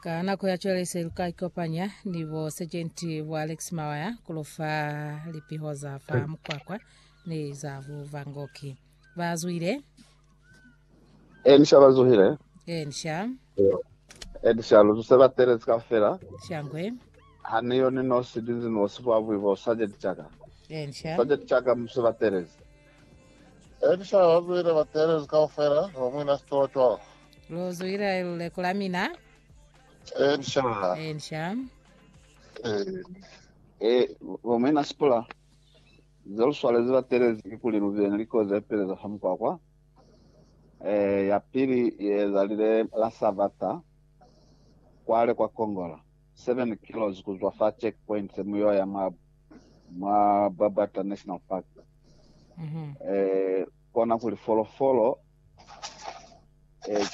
Ka nako ya cwale se lu ka ikopanya ni bo Sergeant bo Alex Mawaya ku lu fa lipiho za fa Mukwakwa ni za Buvangoki. Ba zwile Eh, nisha ba zuhile. eh nisha Eh, nisha lu zuse ba telezi ka fela. shangwe Ha ni yo ni nosi dinzi ni osi bwa bwi bo sajeti chaka. eh nisha Sajeti chaka muse ba telezi. Elisha wa zuile bakeelezi kaufela ba muina sitola 12. Lu zuile luleko la mina. Elisha. Elisha. Eh. Eh, ba muina sitola ze lu swalezi bakeelezi ki kuli lu bile ni likozi ze peleza fa mukwakwa. Eh, ya pili ye ezalile la Sabata kwale kwa Kongola. 7 kilos ku zwa fa checkpoint se mu yo ya mwa, mwa Babata National Park. Mm -hmm. Eh, kona kuli folofolo, eh,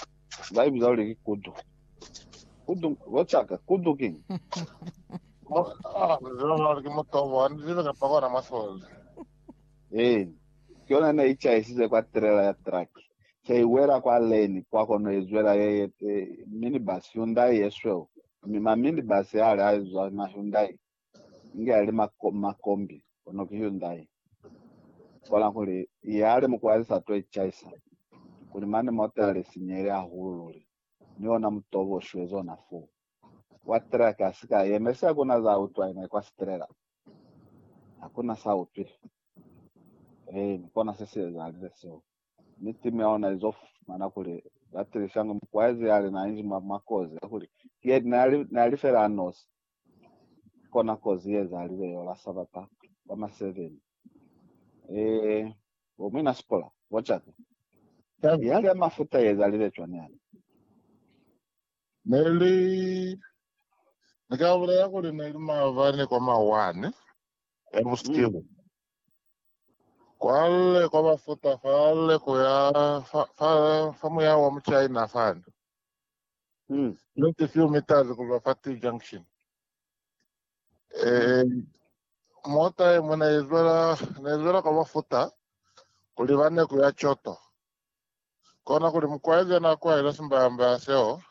ba ibiza kuli ki kudu. Kudu, bochaka, kudu king. Mo, ah, zwa ke motobo, ndi zibe ka pakona masole. Eh, ke yona ne ichaisize kwa trailer ya truck. se i wela kwa leni, kwa kono i zwela ye ye te minibus, Hyundai ye sweu, mi ma minibus a le a izwa ma Hyundai, inge a li ma, ma kombi, kono ki Hyundai. Kola kuli, ya li mukwa ya li sa to i chaisa, kuli mane mota li sinyehile hahulu luli, mi ona mutobo u shwezi ona foo. Wa truck a si ka yeme, se hakuna za utwa ina kwa strela. Hakuna sa utwile. Ee, mi kona se si ezalile seo. mi timu ya ona izo fumana kuli ba tilisanga mukwaezi yali na inzi mwa makozi a kuli ki yena nali, nali fela anosi. Kona kozi ye ezalile yola Sabata ba ma 7. E, bo mwina Sipora, bocaka. Yali ya mafuta ye ezalile cwani yale? Neli, ni ka bulela kuli neli maavani kwa ma 1 ya busihu. Kwale kwa ba futa fale ku ya fa, fa, fa muya wa mu China fani. Mm. Just a few meters ku ba fa T junction. Eh, mota e mona izwela, ne izwela kwa ba futa, kuli ba ne ku ya Choto. Kona kuli mukwaezi na kwaela simbamba seo,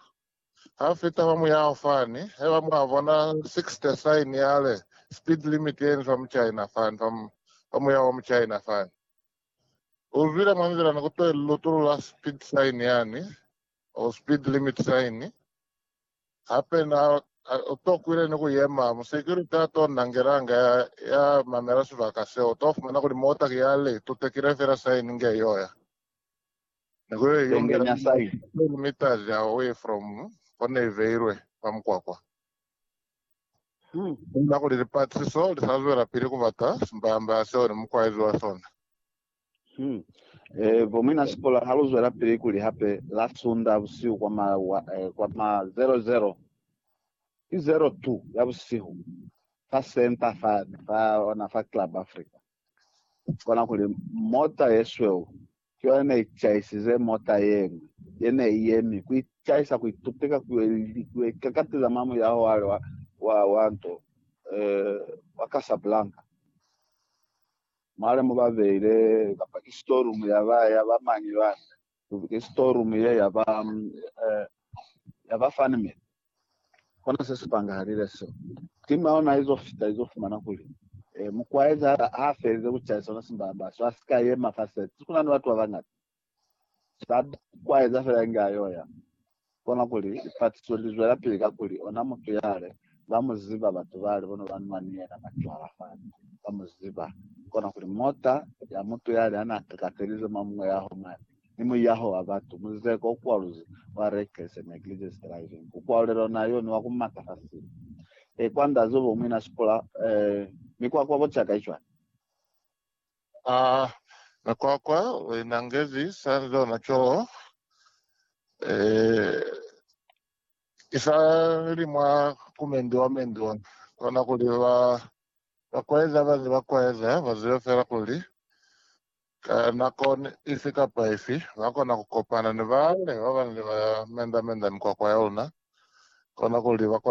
Ha fita fa muyaho fani, haiba mwa bona 60 sign ya re speed limit yeni fa muchina fani, fa, fa muyaho wa muchina fani. U zwile mwa nzila ni kuto ili lutulu la speed sign yani, or speed limit sign. Hape na, u to kwile ni ku yema. Mu security a to nangelanga ya, ya mamela sibaka seo, u to fumana kuli mota ki ya le itutekile fela sign nge yoya. Penge mya sayi. Kilometres away from ko ne ibeilwe kwa mukwakwa. Kuba kuli lipatrisiso li sa zwelapili ku bata simbamba ya seo ni mukwaezi wa sona. Bo muina sikola ha lu zwelapili kuli hape la Sunda busihu kwa ma, kwa ma 00, ki 02 ya busihu, fa center fani, fa ona fa Club Africa, kona kuli mota ye sweu Ki yona ne i caisize mota ye ñwi ye ne i yemi ku icaisa ku itupeka ku yo ikakatiza mwa muyaho wale wa nto wa Casablanca, mwale mo ba beile, kamba ki storeroom ya ba, ya ba mañi bana? Ki storeroom ye ya ba, ya ba funny man. Kona se si pangahalile seo. Timu ya ona izo fita izo fumana kuli, e, mukwaezi ha a felize ku cayisa ona simbamba so, a si ka yema fa sete. Kuna ni batu ba bañata ba kwaeza fela inge a yo ya. Kona kuli, lipatiso li zwelapili kakuli ona mutu yale ba mu ziba, batu bale bono ba nwa ni yena macwala fani ba mu ziba. Kona kuli, mota ya mutu yale ha n'a kakatelize mwa muñwe ya ho mane, ni muyaho wa batu, muzeko o kwaluzi wa reckless and negligence driving, ku kwalulelwa na yoni wa ku maka fa sina. E kwa ndazi obo umwi na sipula eh, mi kwa kwabo caka icwani? Ah, na kwa kwa we na ngezi sa lona coo, eh, isa li mwa ku mendiwa mendiwa, kona kuli ba, ba kwaeza ba ni ba kwaeza ba zibe fela kuli Ka nako ifi kapa ifi, lwa kona ku kopana ni baaluwa ba ba nili ba mendamenda mikwakwa ya luna, kona kuli ba kona ku